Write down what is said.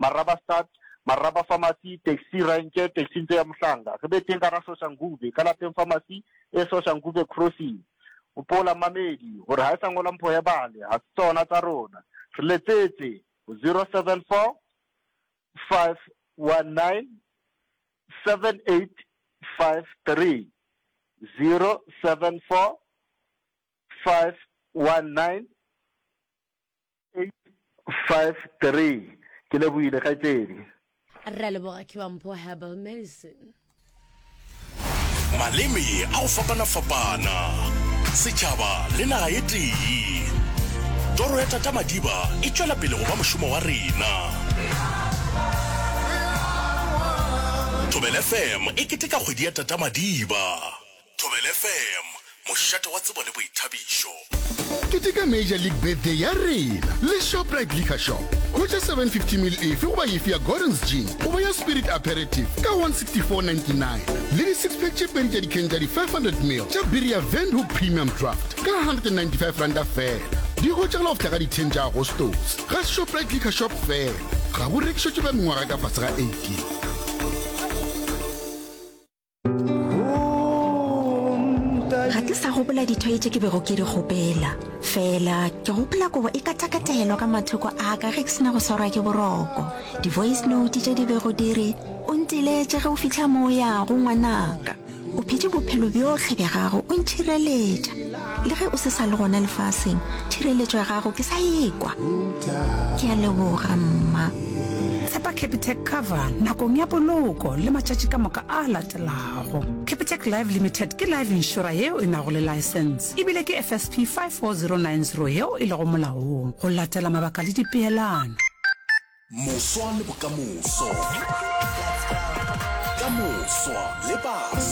Marabastad, Maraba Pharmacy, Taxi Ranch, Taxi Ntlo ya Mohlanga, re be teng gara Soshanguve, ka lapeng Pharmacy e Soshanguve Crossing. O pola mmamedi, gore ha e sa ngolwa mpho ya bale, ga se tsona tsa rona. Re letsetse, 074 519 7853, 074 519 853 Ke lebohile kgaetšedi. Re a leboga Kibampho Herbal Medicine. Maleme a go fapana-fapana, setšhaba le naga e tee. Toro ya Tata Madiba e tšwela pele go ba mošomo wa rena. Thobela FM e keteka kgwedi ya Tata Madiba. Thobela FM, mošate wa tsebo le boithabišo. Keteka Major League Birthday ya rena le Shoprite Liquor Shop. Hwetša 750ml efe goba efe ya Gordon's Gin goba ya Spirit Aperitif ka 164.99 le di-six-pack tše pedi tša dikheng tša di-500ml tša biri ya Windhoek Premium Draft ka 195 ranta feela. Di hwetšagala go fihla ka di 10 tša Agostose ga Shoprite Liquor Shop feela. Ga bo rekišetšwe ba mengwaga ka fase ga 18. ga ke sa gopola dithoi tše ke bego ke di kgopela fela ke gopola kobo e katakatelwa ka mathoko a ka ge ke sena go swarwa ke boroko di-voice note tše di bego di re o ntiletše ge o fitlha mo o yago ngwanaka o phete bophelo bjohle bja gago o ntšhireletša le ge o se sa le gona lefaseng tšhireletšo ya gago ke sa ekwa ke a leboga mma tshepa capitec cover nakong ya poloko le matšatši ka moka a latelago capitec live limited ke live insura yeo e nago le license ebile ke fsp 54090 yeo e lego molaong go latela mabaka le dipeelano moswa le bokamoso ka moswa le baso